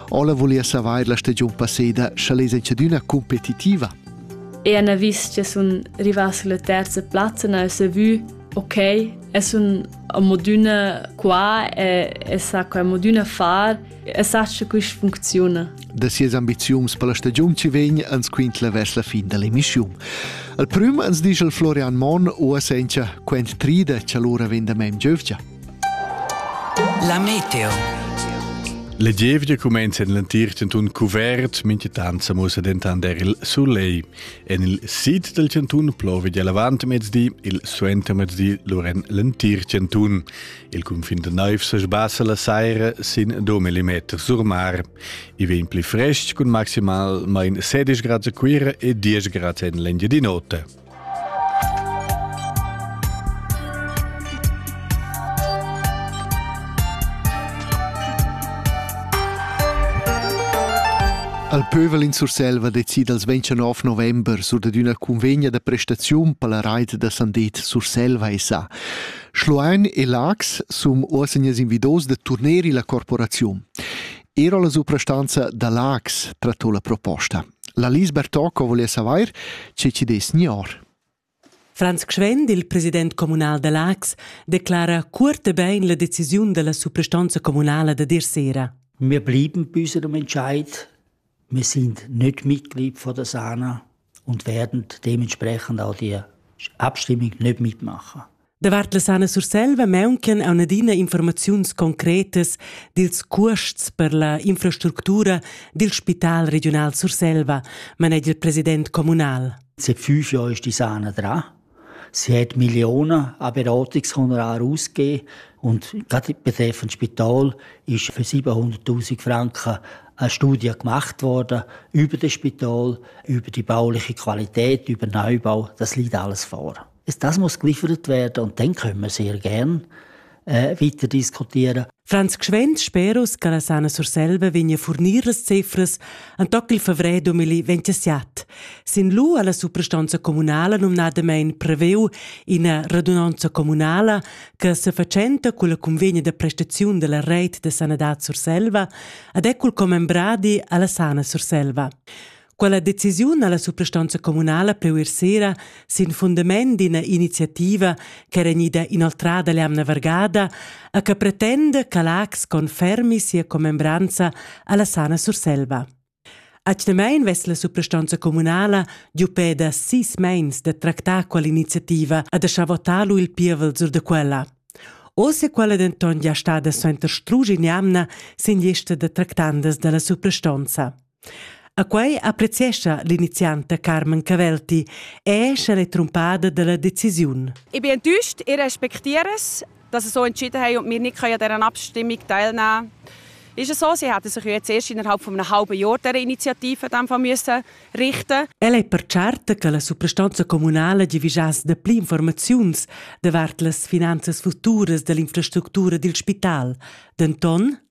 Ola volia savair la stagiun passeda, scha lez enchadüna competitiva. E ana vis che sun rivas sulla terza plazza, na ho vu, ok, e sun a modüna qua e, e sa qua modüna far, e sa che quist funcziuna. Da sias ambiziuns per la stagiun ci vegn ans quintla vers la fin da l'emissiun. Al prüm ans disch il Florian Monn uossa encha quent trida cha lura vegn da mem giövgia. La meteo. Le gievgia cumenza en l'entir chantun cuvert, mintgatant sa mussa dentant er il soleil. En il sid dal chantun plova gia l'avantmezdi, il suentermezdi lur en l'entir chantun. Il cunfin da naiv sa sbassa la saira sin 2 mm sur mar. I vegn pli frestg cun maximalmain 16 grads a Cuira e 10 grads en l'Engiadin'Ota. Al pövel in Surselva decida il 29 november sur dad üna cunvegna da prestaziun per la rait da Sandet Surselva SA. Schloein e Lax sun uossegnas invidos da turner illa corporaziun. Era la suprastanza da Lax trattò la proposta. La Lise Bertocco voless avair che chi dess gnor. Franz Gschwend, il president communal da Laax, declara cuort e bein la decisiun dalla suprastonza communala da dir sera. Wir blieben bis zu dem Entscheid. Wir sind nicht Mitglied von der SANA und werden dementsprechend auch die Abstimmung nicht mitmachen. Davart la Sana Surselva mauncan aun adina informaziuns concretas dils cuosts per la infrastructura dil Spital Regional Surselva, manegia il president communal. Sie fünf ist die Sahne dran. Sie hat Millionen an Beratungshonorare ausgegeben und gerade betreffend Spital ist für 700.000 Franken eine Studie gemacht worden über das Spital, über die bauliche Qualität, über Neubau. Das liegt alles vor. Das muss geliefert werden und dann können wir sehr gern äh, weiter diskutieren. Franz Gschwend speros che la sana Surselva vegna fornir las cifras Antoc il fevrer 2027. Sin lu alla suprastanza comunala nomnadamein preveu ina radunanza comunala che se facenta con la convegna de prestazione della rete de sanadad Surselva ad ecul commembradi alla sana Surselva. Quella decisiun ha la suprastonza communala pleu ir sera sin fundament d'ina iniziativa ch'era gnida inoltrada l'emna vargada a che pretenda che l'AX confermi sia commembranza alla Sana Surselva. Atgnamein vess la suprastonza communala giu peda sis meins da tractar quell'iniziativa e da schavotar lu il pievel sur de quella. Oz è quella denton gia stada suenter strugi in jamna sin lista da tractandas dalla suprastonza. A quei appreziescha l'inizianta Carmen Cavelti e sch'el è trumpada dalla decisiun. Ich bin enttäuscht, ihr respektiert dass sie so entschieden haben und wir nicht an dieser Abstimmung teilnehmen können. Ist es so, sie hätten sich jetzt erst innerhalb von einem halben Jahr dieser Initiative müssen richten El è per certa che la suprastanza comunale givischasse de pli informaziuns davart las finanzas futuras dell'infrastruttura dil spital. Denton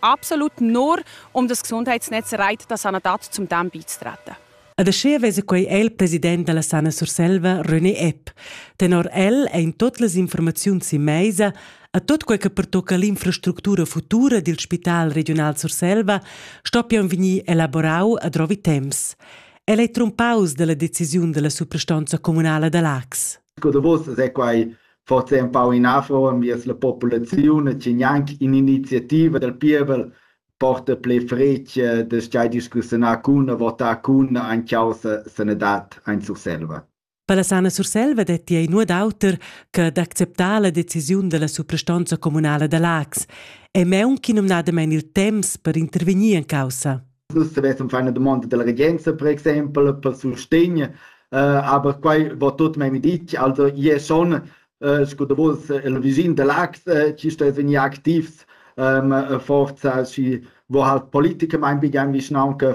absolut nur um das Gesundheitsnetz Reit da sanadad zum Dam beizutreten. Ed aschia vesa quei el president dalla Sana Surselva, René Epp. Tenor el ein tut las informaziuns in meisa a tot quei che pertocca l'infrastructura futura dil Spital Regional Surselva stoppian vegnir elaborau a drovi temps. El ei trumpaus dalla decisiun dalla suprastanza communala da Lax. Sco davos sai quai forsa empau inafro enviers la populaziun e che gnanc in'iniziativa dal pievel porta pli fretg da schai discussiunar cun e votar cun ein causa sanadad ein Surselva. Per la Sana Surselva detti ei nuot auter che d'acceptar la decisiun della suprastonza communala da Lax e meun chi numnadamein il temps per intervegnir en caussa. Nus savessem far una domanda della regenza, per exempel, per sustegn, uh, aber quai va tot memia ditg, also io son, uh, sco da vos, il visin de Lax, uh, ci sto vegnir activs um, forza si, wo halt Politiker mein begann, vischnaunca,